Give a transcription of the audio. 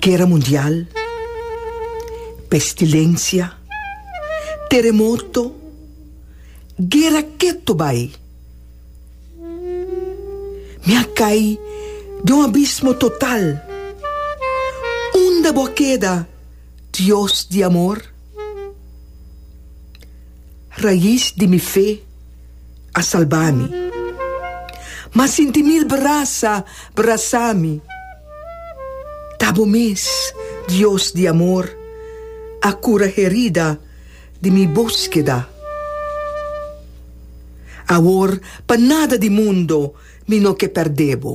Guera mundial, pestilensia, teremoto, guera ketu bai. Mi a kai den un abismo total. Unda bo a keda, Dios di amor? Rais di mi fe a salba mi. Mas sinti mil brasa brasa mi. Ta bo mes, Dios di amor, a cura herida di mi boskeda. Awor pa nada di mundo mi no ke perde bo.